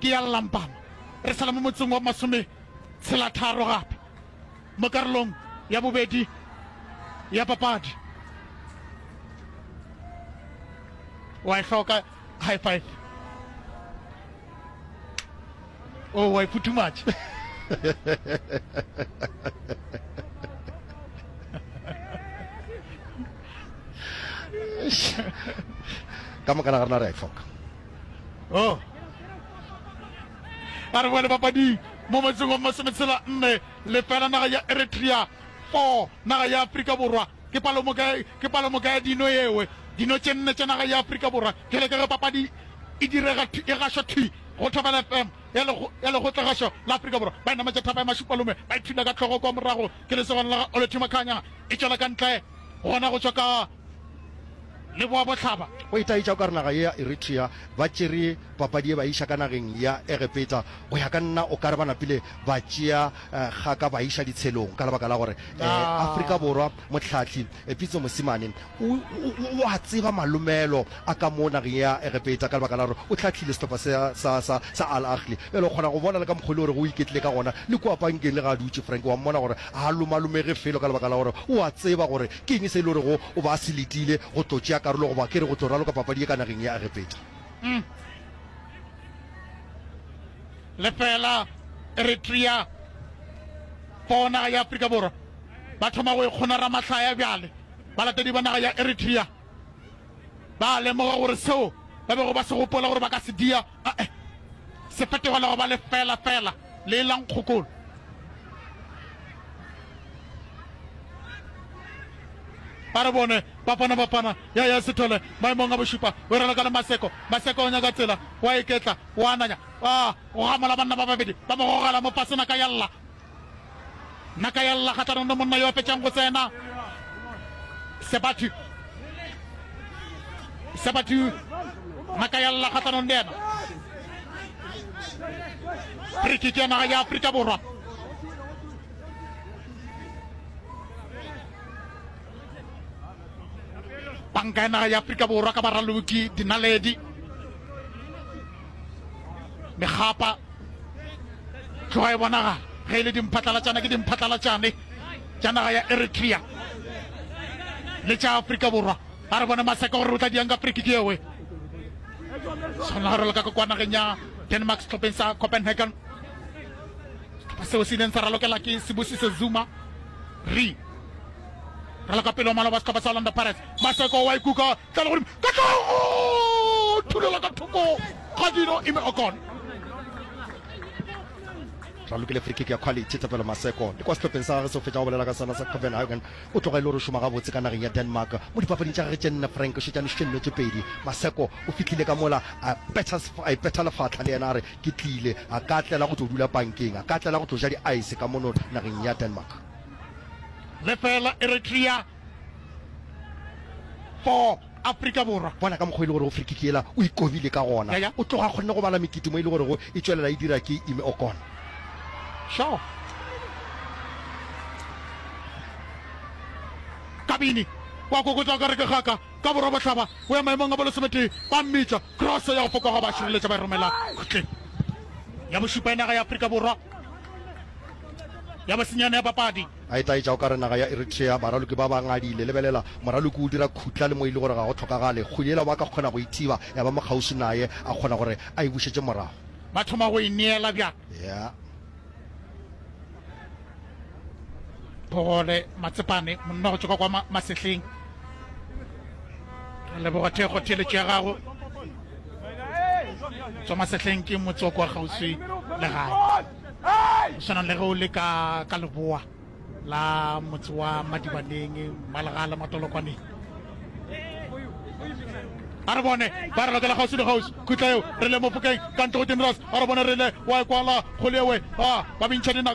ke ya Llampama. Re sala mo motseng wa masometshelatharo gape mo karolong ya bobedi ya papadi. Wa e hloka high five. Oh, wa e futhumatša. ka moka na ga rena re a e hloka oh. a re boele papading mo motseng wa masometshela nne lefela naga ya eritrea four naga ya aforika borwa ke palomoka ya dino ewe dino tše nne tša naga ya aforika borwa jale ka ge papadi e direga e gašwa thi go thobela fm ya legotlegašo la aforika borwa ba enama tša thapa ya mashupalome ba ithula ka tlhogo kwa morago ke lesogana la ga olethima kganya e tšwela ka ntle gona go tswa ka le boa bohlaba. Go itaetša o ka re naga ye ya Eritrea ba tšere papadi ye ba e iša ka nageng ya Egepeta. Go ya ka nna o ka re ba napile ba tšea kgaka ba e iša ditshelong ka lebaka la gore Afrika Borwa mohlahli Pitso Mosimane o o a tseba malomelo a ka mo nageng ya Egepeta ka lebaka la gore o hlahlile sehlopha sa sa sa sa Al Ahly. Bjale o kgona go bona le ka mokgwa e le gore go iketlile ka gona le kua pankeng le ge a dutše Frank wa mmona gore ga a lomalomege felo ka lebaka la gore o a tseba gore Ke eng se e lorego o be a se letile go tlo tšea karolo goba ke re go tlo raloka papadi ye ka nageng ya Egepeta? Umm. Lefela, Eritrea for naga ya Afrika Borwa ba thoma go ikgona ramahlaya bjale. Balatedi ba naga ya Eritrea ba a lemoga gore seo ba bego ba se gopola gore ba ka se dia, a-e, se fetogelwa go ba lefela fela. le e la nkgokolo. ba re bone bapana bapana ya ya sethole maemong a bošupa o rela ka le maseko maseko o nyaka tsela wa eketla wa ananya a go gamola banna ba babedi ba mo gogela mo fasena ka ya lla Naka ya lla kgahlano le monna yo a fetšang go tsena. Sebatu. Sebatu. Naka ya lla kgahlano le yena. Free kick ya naga ya Afrika Borwa. Banka ya naga ya Afrika Borwa ka baraloki dinaledi. megapa tloga e bonagala ge e le dimphatlalatšana ke dimphatlalatšane tša naga ya eritrea le tša afrika borwa a re bone maseka gore re tla diang ka friki ke ewe tshwanela gore le ka kwa nageng ya denmark setlhopheng sa copenhagen setlhopha seo se ileng sa ralokela ke sebosise zuma re raloka pele wa maloba setlhopha sa orlando pirates maseko wa ikuka Ka legodimo, ka tlong! O thulela ka thoko ga dino, Ime Okon. Tla lokile free kick ya quality. Thapelo Maseko le kwa sehlopheng sa gagwe se o fetša go bolela ka sona sa Copenhagen. O tloga e le gore o šoma gabotse ka nageng ya Denmark. Mo dipapading tša gagwe tše nne, Frank o šetše a nošitše nnete pedi. Maseko o fihlile ka mola a betha a ipetha lefahla le yena a re, Ke tlile. A ka tlela go tlo dula pankeng, a ka tlela go tlo ja di-ice ka mono nageng ya Denmark. Lefeela Eritrea. for Afrika Borwa. Bona ka mokgwa o e le gorego free kick yela o e kobile ka gona. O tloga a kgonne go bala mekete mo e le gorego e tšwelela e dira ke Ime Okon. Shaw. Kabini wa kokotsa ka re ke gaka ka borwa bohlaba o ya maemong a bolosemetee ba mmitša cross ya go fokoga ba šireletša ba e romela kgotleng ya bošupa ya naga ya Afrika Borwa ya bosenyane ya papadi. A etaetša o ka re naga ya Eritrea, baraloki ba ba ngadile. Lebelela, moraloki o dira khutla le mo e le gore ga go tlhokagale kgwedi yela ba ka kgona go e thiba ya ba mo kgauswi naye, a kgona gore a e bušetše morago. Ba thoma go e neela bjang? Yeah. Pogole, Matsepane, monna go tšoka kwa ma, masehleng. Re leboga thekgo theeletšo ya gago. Tswa masehleng ke motse wa kwa kgauswi le gae. Go swana le ge o le ka ka leboa la motse wa Madibaneng, Malega le Matolokwaneng. A re bone ba re lokela kgauswi le kgauswi khutla eo re le mofokeng ka ntle go Dinras. A re bone re le wa ekwala kgole ewe a ba bintšha dinaka.